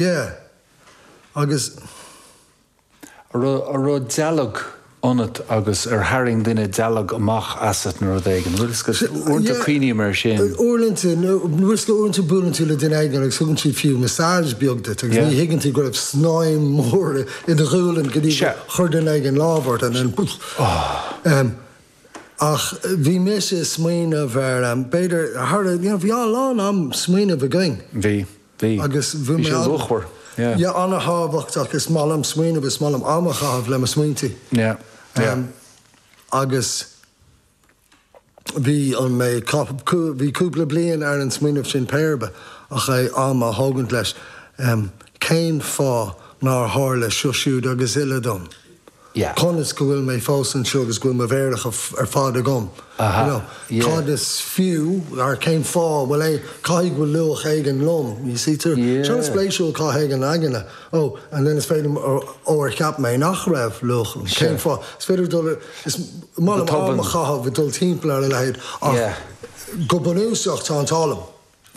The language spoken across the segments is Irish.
Yeah, agus. An raibh, an raibh dealg ionat agus ar tharraing duine dealg amach asat nó rud éigin? Bhuel, agus uaireanta cuimhním ar sin. Yeah, uaireanta, nó bhfuil 's go uaireanta buaileann tú le duine éigin agus thugann siad fiú massage beag duit agus ní thuigeann tú go raibh snaidhm mhór i do ghualainn go dtí gur chuir duine éigin lámh ort and then poof. Em, ach bhí mise a' smaoineamh ar, em, b'fhéidir thar, you know, bhí a lán am smaoineamh againn. Bhí. Bhí. Agus bhí mé ann. Bhí sé luachmhar. Yeah. Yeah, an-thábhachtach. Is maith liom smaoineamh, is maith liom am a chaitheamh le mo smaointí. Yeah, yeah. Agus bhí an, mé ag caitheamh, bhí cúpla bliain ar an smaoineamh sin mura mbeadh é ach am a thógaint leis, cén fáth nár tharla seo siúd agus uile dom? yeah. Conas go bhfuil mé fós anseo agus go bhfuil mo mhéaracha ar fad agam, you know, yeah. Cad is fiú, or cén fáth a bhfuil aon, caithfidh go bhfuil luach éigin liom, you see, tú, yeah. Sin an-spéisiúil cá dtéann an aigne, oh, and then is féidir, oh, ar cheap mé nach raibh luach liom, sure. Cén fáth, is féidir dul, is maith liom am a chaitheamh ag dul timpeall ar a leithéid ach yeah. go bunúsach tá an t-ádh liom.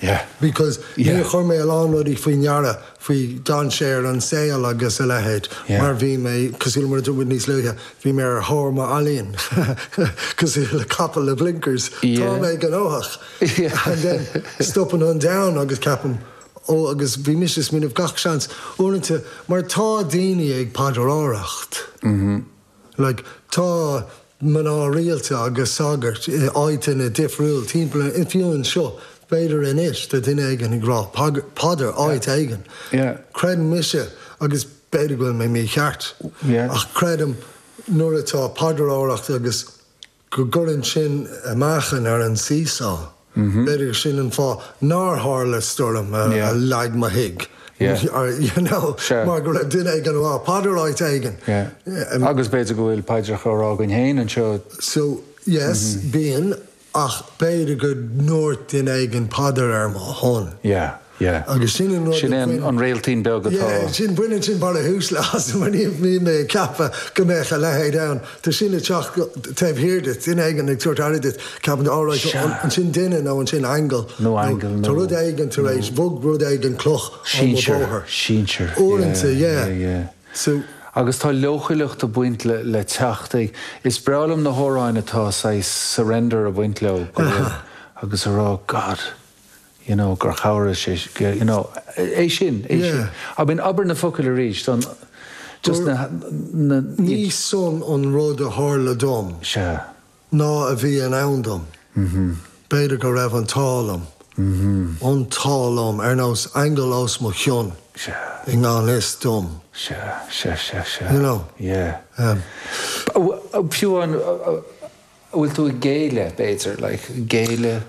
Yeah. Because níor thug mé a lán rudaí faoi deara faoi dhainséir an tsaoil agus a leithéid mar bhí mé, cosúil le mar a dúirt muid níos luaithe, bhí mé ar thóir mo ealaíon, cosúil le capall le blinkers, tá mé gnóthach! And then stopann an domhan agus ceapaim ó agus bhí mise ag smaoineamh gach seans, uaireanta mar tá daoine ag paidreoireacht. Like, tá mná rialta agus sagairt i áiteanna difriúil timpeall an oileáin anseo, b'fhéidir anois tá duine éigin ag rá paidir áit éigin. Creidim mise, agus b'fhéidir go bhfuil mé mícheart, ach creidim nuair atá paidreoireacht agus. go gcuireann sin meáchan ar an seesaw. B'fhéidir sin an fáth nár tharla stoirm a leag mo thigh, you know, mar go raibh duine éigin ag rá paidir áit éigin. Yeah, agus b'fhéidir go bhfuil paidreacha á rá againn féin anseo. So, yes, bíonn, ach b'fhéidir go ndúirt duine éigin paidir ar mo shon. Yeah. Yeah. Agus sin an rud a bhain. Sin é an réiltín beag atá. Yeah, sin, baineann sin barrithús le Shasana, ní bhí mé ag ceapadh go mbeadh a leithéid ann. Tá sin ag teacht taobh thiar duit, duine éigin ag tabhairt aire duit, ceapann tú alright, ansin duine nó ansin aingeal. Nó aingeal nó. Tá rud éigin tar éis, bhog rud éigin cloch ó mo bhóthar. Sinsear, sinsear. Uaireanta, yeah. Yeah, yeah. So. Agus tá leochaileacht ag baint le teacht ag, is breá liom na hamhráin atá saghas surrender ag baint leo, go bhfuil, agus ag rá, God. you know, gur chabhraigh sé, you know, é sin, é sin. Yeah. I mean, abair na focail arís, an, just na, na, Ní sin an rud a tharla dom. Sea. Ná a bhí i ndán dom. B'fhéidir go raibh an t-ádh liom, an t-ádh liom, ar nós aingeal os mo chionn. Sea. I ngan fhios dom. Sea, sea, sea, sea. You know. Yeah. Um. Fiú an, an bhfuil tú ag géilleadh, b'fhéidir, like, géilleadh?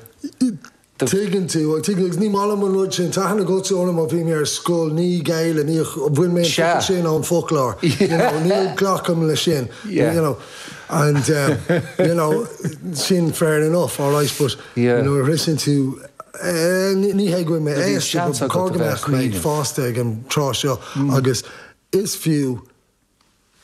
do. Tuigeann tú, an dtuigeann? Agus ní maith liom an rud sin. Tá aithne agatsa orm ó bhí mé ar scoil. Ní ghéillim, ní, bhain mé an Sea. focal sin ón bhfoclóir. You know, ní ghlacaim leis sin. Yeah. You know, and um, you know, sin fair enough, all right, but Yeah. nuair a bhriseann tú, eh, ní, ní hé go bhfuil mé Do bhí aosta, seans but agat chóir a go bheith a mbeadh mé ag caoineadh. fásta ag an tráth seo agus is fiú,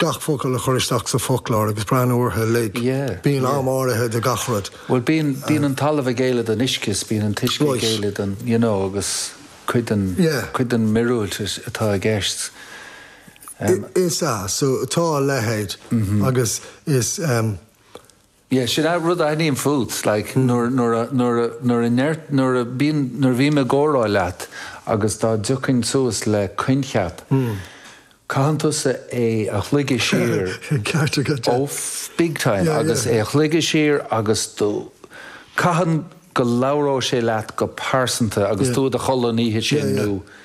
gach focal a chur isteach sa bhfoclóir agus breathnú ortha uilig. Bíonn am áirithe do gach rud. Bhuel bíonn, bíonn an talamh ag géilleadh don uisce is bíonn an t-uisce ag géilleadh don, you know, agus cuid den, cuid den mhíorúilt atá i gceist. Is ea, so tá a leithéid agus is. Yeah, sin a' rud a aithním fút, like, nuair, nuair a, nuair a, nuair a ndeir, nuair a bíonn, nuair a bhím i gcomhrá leat agus dá dtiocfainn suas le coincheap, caitheann tusa é a shloigeadh siar, Sin ceart agat, yeah. oh, big time, Yeah, agus yeah. é a shloigeadh siar agus tú, caitheann go labhróidh sé leat go pearsanta agus Yeah. tú i do chodladh an oíche Yeah, sin yeah. nó,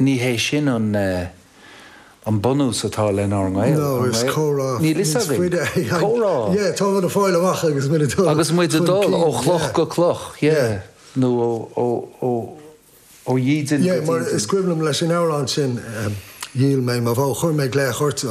Ní hé sin an bunús atá lenár ngaol, an bhfuil? Níl fhios againn. Comhrá. Agus muid ag dul ó chloch go cloch, yeah, nó ó dhídean go dídean. Is cuimhin liom leis an amhrán sin, Dhíol mé mo bhó, chuir mé glaoch ort.